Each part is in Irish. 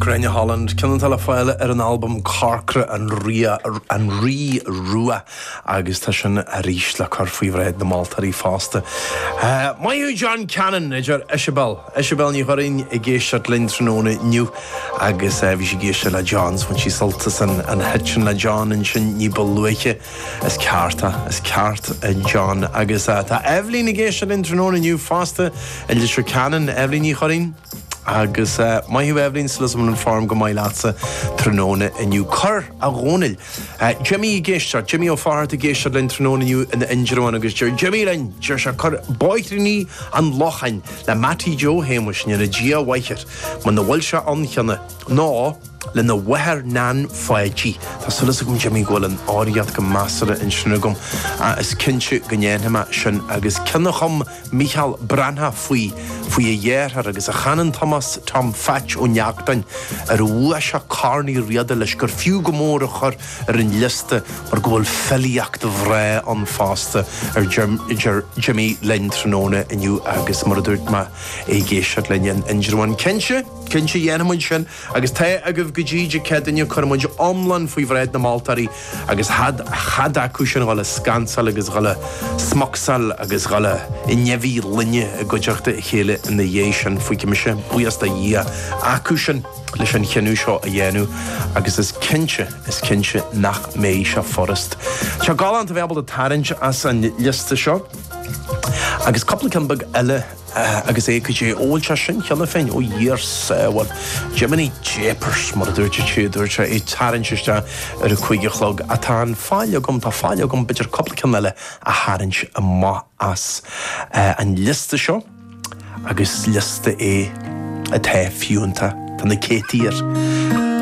Gráinne Holland, ceann atá le fáil ar an albam Corcra, An Rí Rua agus tá sin arís le cur faoi bhráid na moltóirí fosta. Maith thú John Cannon, a deir Iseabel. Iseabel Ní Churraoin ag éisteacht linn tráthnóna inniu agus bhí sí ag éisteacht le John so bhain sí sult as an 'hit' sin le John ansin ní ba luaithe. Is ceart é. Is ceart é John. Agus tá Eibhlín ag éisteacht linn tráthnóna inniu fosta i Leitir Ceanainn. Eibhlín Ní Churraoin. Agus maith thú Eibhlín, súil agam an form go maith leatsa tráthnóna inniu. Cuir, a Dhónaill. Jimí ag éisteacht. Jimí Ó Fátharta ag éisteacht linn tráthnóna inniu in Indreabhán agus deir Jimí linn, deir sé, Cuir Bóithríní an Locháin le Mattie Joe Shéamuis go ndéana Dia a mhaith air, muna bhfuil sé ann cheana, nó, lena mháthair Nan Pháidí. Tá súil agam Jimí go bhfuil an fhoghraíocht go measartha ansin agam ach is cinnte go ndéanfaidh mé sin agus ceann a chum Mícheál Breathnach faoi faoi a dheartháir agus a chanann Tomás Tom Pheaits Ó Neachtain ar bhua sé Corn Uí Riada leis gur fiú go mór a chur ar an liosta mar go bhfuil filíocht bhreá ann fosta a deir Jimí linn tráthnóna inniu agus mar a dúirt mé é ag éisteacht linn in Indreabhán. Cinnte, cinnte dhéanfaidh muid sin. Agus tá agaibh go dtí Dé Céadaoine cuirfidh muid iomlán faoi bhráid na moltóirí agus chead chead acusan dhul a scansáil agus dhul a smocsáil agus dhul a i ndeabhaidh lainne i gcuideachta a chéile ina dhiaidh sin fuígfidh mise buíochas do Dhia acusan leis an chinneadh seo a dhéanamh agus is cinnte is cinnte nach mbeidh sé furast. Tá galánta bheith ábalta tarraingt as an liosta seo agus cupla cinn beag eile agus eh, cad é, Ó bhfuil sé sin cheana féin? Ó thiarcais, eh, bhuel, Jiminy Japers, mar a dúirt an té a dúirt é, ag tarraingt isteach ar a cúig a chlog, a tá an faill agam, tá faill agam, b'fhéidir cupla ceann eile a tharraingt amach as, eh, an liosta seo, agus liosta é atá fiúntach, tá na céadtaí air,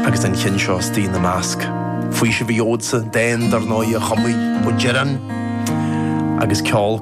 agus an ceann seo istigh ina measc. Faoiseamh a gheobhadsa dán dar ndóigh de chuid Uí Dhireáin, agus ceol,